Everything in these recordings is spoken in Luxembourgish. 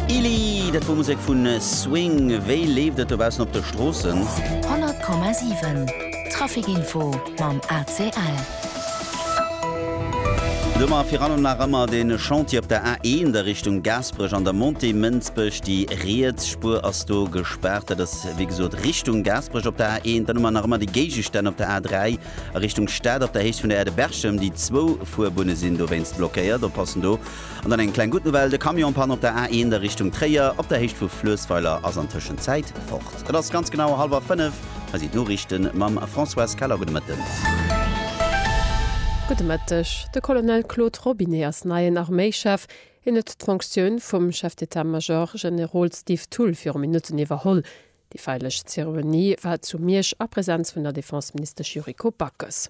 Ili, dat wor Musek vun Swing. Wéi leeft et dobaussen op de Stroossen? 100,7 Traficinfo mam ACL. Domat fir allem nach ëmmer de Chantier op der A1 a Richtung Gaasperech an der Montée Mënsbech. Déi riets Spuer ass do gespaart. Dat ass wéi gesot Richtung Gaasperech op der A1. Dann hu mer nach ëmmer déi Géigestänn op der A3 a Richtung Stad op der Héicht vun der Aire de Berchem. Déi zwou Fuerbunne sinn dowéinst blockéiert. Oppassen do! An dann eng kleng gutt Nouvelle, de Camion-Pan op der A1 a Richtung Tréier op der Héicht vu Fluessweiler ass an Tëschenzäit fort. Et ass ganz genau hallwer 5. Hei sinn d'Noriichten mam Françoise Keller. Gudde Mëtten. Gudde Mëtteg. De Colonel Claude Robinet ass neien Arméichef. Hien huet d'Fonktioun vum Chef d'État-Major Generol Steve Thull viru Minutten iwwerholl. Déi feierlech Zeremonie war zu Miersch a Presenz vun der Defenseministesch Yuriko Backes.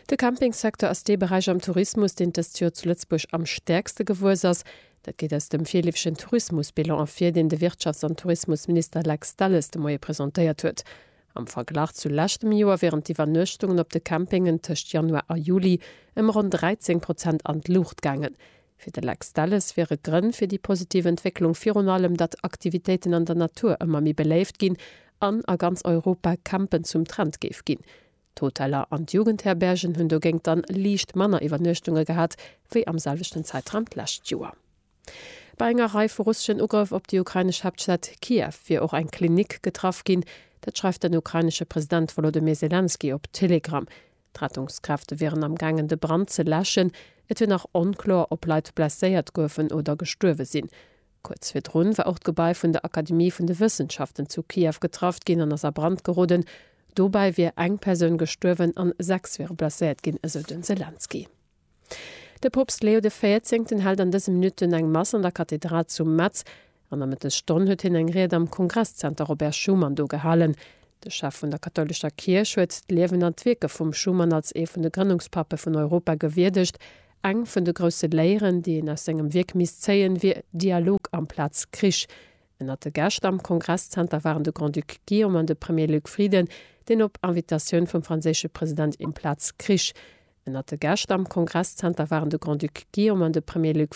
De Campingsecteur ass dee Beräich am Tourismus, deen dëst Joer zu Lëtzebuerg am stäerkste gewuess ass. Dat geet aus dem virleefegen Tourismusbilan ervir, deen de Wirtschafts an Tourismusminister Lex Delles de Moie presentéiert huet. Am Verglach zu leschtem Joer wieren d'Iwwernuechtungen op de Campingen tëscht Januar a Juli ëm ronn 13 Prozent an d'Luucht gaangen. Fir de Lex Delles wiere Grënn fir déi positiv Entwécklung virun allem, datt Aktivitéiten an der Natur ëmmer méi beléift ginn an a ganz Europa Campen zum Trend géif ginn. D'Hoteller an d'Jugendherbergen hunn dogéint dann liicht manner Iwwernuechtunge gehat wéi am selwechten Zäitraum d'lescht Joer. Bei enger Rei vu russeschen Ugrëff op déi ukrainesch Haaptstad Kiew wier och eng Klinik getraff ginn. Dat schreift den ukrainesche President Wolodymyr Selenskyj op Telegram. D'Rettungskräfte wieren am gaangen de Brand ze läschen. Et wier nach onkloer, ob Leit blesséiert goufen oder gestuerwe sinn. Kuerz virdrun war och d'Gebai vun der Akademie vun de Wëssenschaften zu Kiew getraff ginn an ass a Brand geroden. Dobäi wier eng Persoun gestuerwen an sechs wiere blesséiert ginn, esou de Selenskyj. De Poopst Leo de Véierzéngten hält an dëse Minutten eng Mass an der Kathedral zu Metz. An der Mëttesstonn huet hien eng Ried am Kongresszenter Robert Schuman do gehalen. De Chef vun der kathoulescher Kierch huet d'Liewen an d'Wierke vum Schuman als ee vun de Grënnungspappe vun Europa gewierdegt, Eng vun de grousse Léieren, déi een aus sengem Wierk misst zéien, wier Dialog amplaz Krich. Ënnert de Gäscht am Kongresszenter waren de Grand-Duc Guillaume an de Premier Luc Frieden, deen op Invitatioun vum franséische President Implaz Krich. Ënnert de Gäscht am Kongresszenter waren de Grand-Duc Guillaume an de Premier Luc.